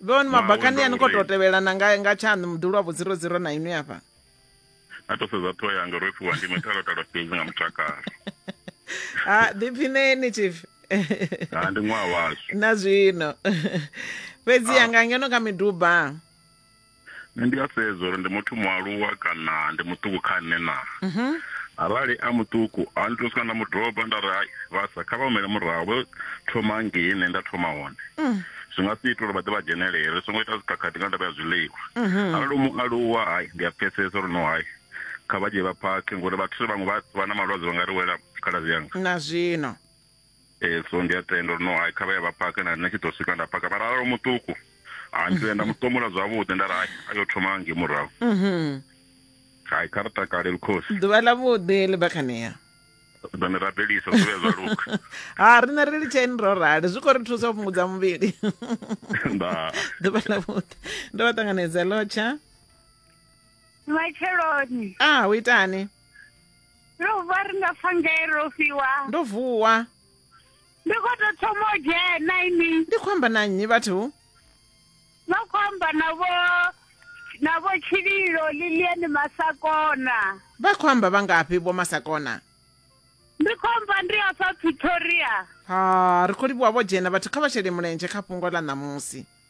vhoni mabakani ani khou tou tevhelana nga nga tshaṋu muḓi lwa vho zero zero na inwi afha a to sedza ṱhoho yanga ro fhiwa ndi mithalotalo fhedzi nga mutakalo ha ḓiphineni chief ha ndi ṅwaha washu na zwino fhedzi yanga ngeno kha miduba nṋe ndi a sedza uri ndi muthu mualuwa kana ndi muṱuku kha nṋe na mhm. arali a muṱuku a ndi to swika nda mu dropa nda ri hai vhasa kha vha humele murahu vho thoma ngei nṋe nda thoma hone mm. zwi nga si ita uri vha ḓe vha dzhenelele ri songo ita dzikhakhathi nga ndavha ya zwiḽiwa mhm. arali u mualuwa hai ndi a pfesesa uri no hai kha vha dzhie vha phakhe ngori vhathu vhaṅwe vha na malwadze vha nga ri wela khaladzi yanga na zwino e so ndi a tenda uri no hai kha vha ya vha paka na nṋe tshi ḓo swika nda paka vha ralo muṱuku ha ndi nda muṱomula zwavhuḓi nda ri hai a yo thoma nge murahu mhm. hai kha ri takale lukhosi ḓuvha ḽa vhuḓi ḽi bva khanea ḓone rabelisa zwi vhe zwa luka ha riṋe ri litsheni ro rali zwi khou ri thusa u fhungudza muvhili nda ḓuvha ḽa vhuḓi ndo vha ṱanganedza lotsha matsheloni ah u itani Ro vha ri nga pfa ngae ro fiwa. Ndo vuwa. Ndi khou tou thoma u dzhena ini. Ndi khou amba na nnyi vhathu? Vha khou amba na vho na vho Tshililo Lilian Masakona. Vha khou amba vha ngafhi vho Masakona? Ndi khou amba ndi hafha Pretoria. Ha, ri khou livhuwa vho dzhena vhathu kha vha shele mulenzhe kha fhungo ḽa ṋamusi.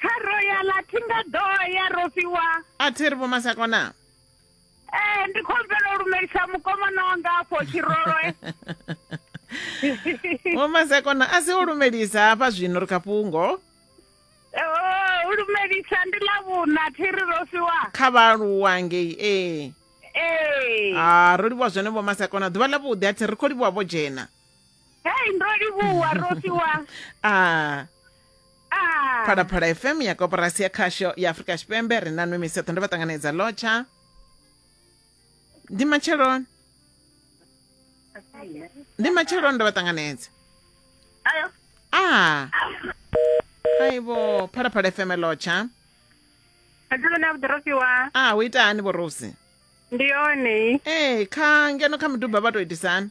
kha royal a thi nga ḓo ya ro fhiwa a thi ri vhomasakona ee eh, ndi khou bvela u lumelisa mukomana wanga afho tshirolwe vhomasakona a si u lumelisa hafha zwino ri kha fhungo oh, u lumelisa ndi ḽa vhuna thi ri ro fhiwa kha vhaaluwa ngei ee eh. ee eh. a ah, ro livhuwa zwone vhomasakona ḓuvha ḽa vhuḓi a thi ri khou livhuwa vho dzhena hei ndo livhuwa ro fhiwa a ah. Ah, phalaphala fm ya koporasi ya khasho ya afurika tshipembe ri na nwe miseṱho ndo vha ṱanganedza lotsha ndi matsheloni ndi matsheloni ndo vha ṱanganedza ayo. a aibo phalaphala fm lotsha Adzivha na vhuḓorofi wa. a hu ita hani vhorosi Ndi yone. ee kha ngeno kha miduba vha tou itisani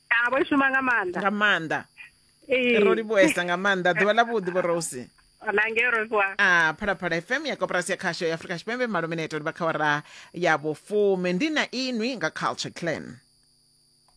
Ah, vho i shuma nga maanḓa nga maanḓa Ee. ro livhuhesa nga maanḓa ḓuvha ḽa vhuḓi vho rose na ngei rofiwa a phalaphala fm ya koporasi ya khasho ya afurika tshipembe malumineto livha kha wara ya vhufumi ndi na inwi nga culture clan